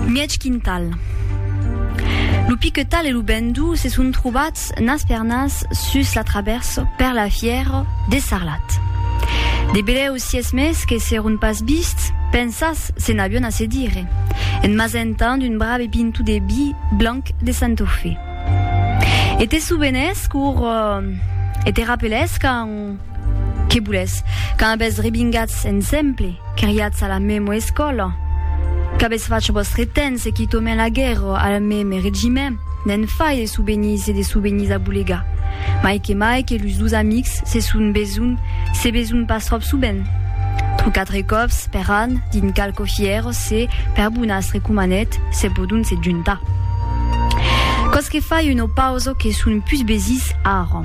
Mièg quintal. Lo piquetal e lo bendó se son trobats nas per nas sus la travèrsa per la fièra de Sarlat. De belèus sies mes que s'èron pas vists, pensats se n'avion a se dire, en m'asentant un brave pinto de vi blanc de Santofe. E te sovenès qu'aur e te rapelès quand, Que boulètz? Quand avètz rebingatz ensemble, criatz a la mèma escòla? Qu'avètz fach vòstre temps e quitòmen la guèrra al mème regiment? N'en fai de souvenís e de souvenís a bolegar. Mai que mai que los dos amics se son besonh, se besonh pas tròp sovent. Trò quatre còps per an, dins qualques fièras, se, per bonas recomanèt, se pòdon se juntar. Quò's que fai una pausa que son pus besís ara.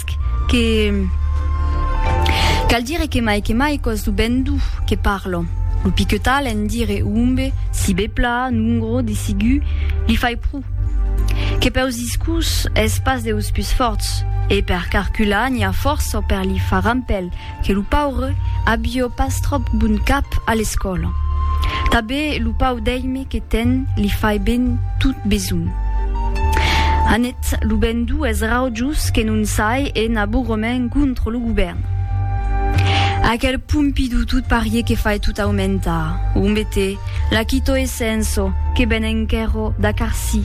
Esc que cal dire que mai que mai cos lo ben duu que parlo. Lo piquetal en dire umbe, sibepla, nungro, desigu, li fai pru. Que peus discus es pas deus pus forts, e per carcular n'i a fòrça per li far rampel, que lo paure abió pas tròp bon cap a l'escòla. Tabé lo pau d'èime que ten li fai ben tot besonh. Anet lo ben dues raujos que non sai en abourrement contra lo govèrn. Aquel Pompidou tot parier que fai tot aumentar, ombete, la Quito e Senso que ben enquèro da Carci.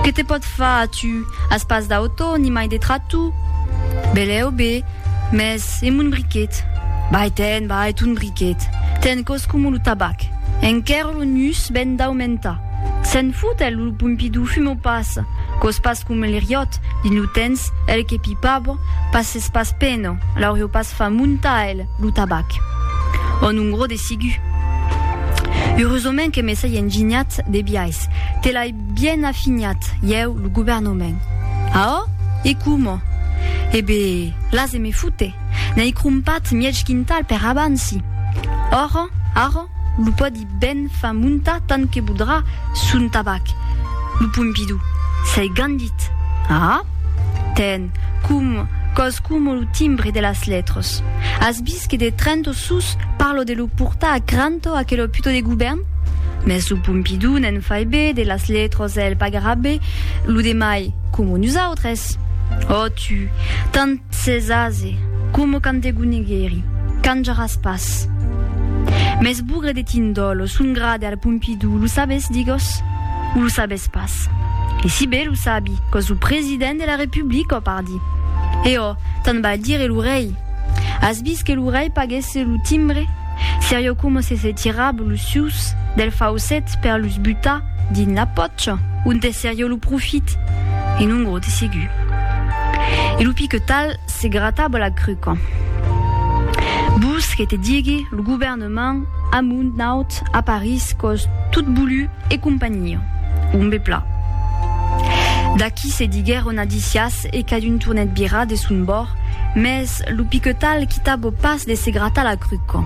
Que te pòt far a tu As pas d'auto, ni mai de tratu? Belèu be, mès e mon briquet? Bai ten, bai, ton briquet. Ten cos coma lo tabac. Enquèr lo nus ben daumentar. Se'n fut, el, lo Pompidou, fuma pas. Cos pas coma l'Eriot, dins lo tens, el que pipava, pas es pas pena, l'aurió pas fa montar, el, lo tabac. Ò non gro de sigu. Eurosament que me sai enginhat de biais. Te l'ai. Bien afinhat, ieu, lo governament. Aò? E coma? E be, las e me fute. N'ai crompat mièg quintal per abansi. Ora, ara, lo pòdi ben far montar tant que vodrà son tabac, lo Pompidou. S'ai gandit. Aà? Ten, com, còs coma lo timbre de las letres. As vist que de Trento sus parlo de lo portar a Cranto aquelo puto de govern? Mès lo Pompidou ne'n fai be, de las letras el pagarà be, lo demai, coma nosautres. Ò tu, tant s'es ase, coma quand te goneguèri, canjaràs pas. Mès bougre de tindòlo, son grade al Pompidou, lo sabes, digòs? O lo sabes pas? E si be lo sabi, còs lo president de la Republica, pardi. E ò, tant val dire lo rei. As vist que lo rei paguèsse lo timbre? Serio coma se se tirab los sucs del faucet per los butar dins la pòcha onte serio lo profit e non gros de segur. E lo piquetal se grataba la cruca. Vos que te digui lo govèrnament amunt naut a París còs tot bulu e companhia. Ombe pla. D'aquí se diguèron adicias e cadun tornèt virar de son bòrd, mès lo piquetal quitava pas de se gratar la cruca.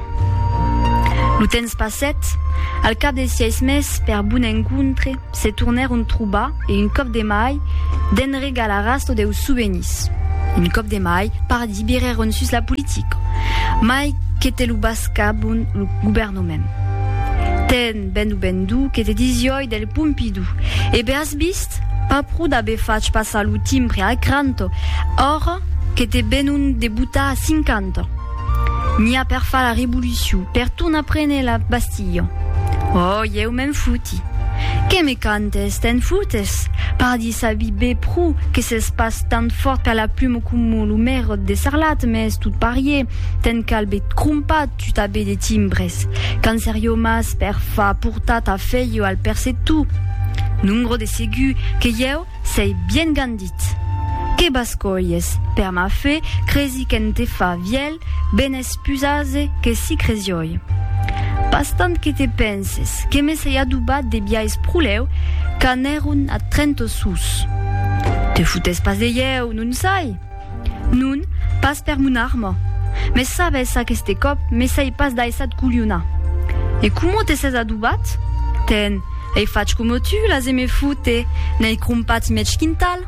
Lo temps passèt, al cap de sièis mes, per bon encontre, se tornèron trobar e un còp de mai, de'n regal arrastò deus souvenirs. Un còp de mai, pardi, virèron sus la politica, mai que te lo bascabon lo governament. Ten ben o ben duu que te disiòi del Pompidou e As vist? Pas pro d'aver fach passar lo timbre a cranto, ora que te venon de botar a cinquanta. N'i a per far la revolucion, per tornar prene la Bastilha. Oh, ieu me'n foti. Que me cantes? Te'n fotes? Pardi sabi be pro que s'es pas tant fòrt per la pluma coma lo merrot de Sarlat, mès tot parier, te'n cal be trompat, Tutabe de timbres. Cancerio mas per fa portar ta feio al percetu. Nungro de segur que ieu sei bien gandit. Que bascolhes, per ma fe, cresi qu'en te fa vièlh ben es pus ase que si cresioi. Pas tant que te penses, que me sei adobat de biais proleu qu'anèron a Trento sus. Te foutes pas de ieu, non sai? Non, pas per mon arma. Mes sabes, aqueste còp me sai pas daissat colhonar. E coma te ses adobat? Ten, ei fach coma tu l'as e me foute, n'ei crompats mètge quintal.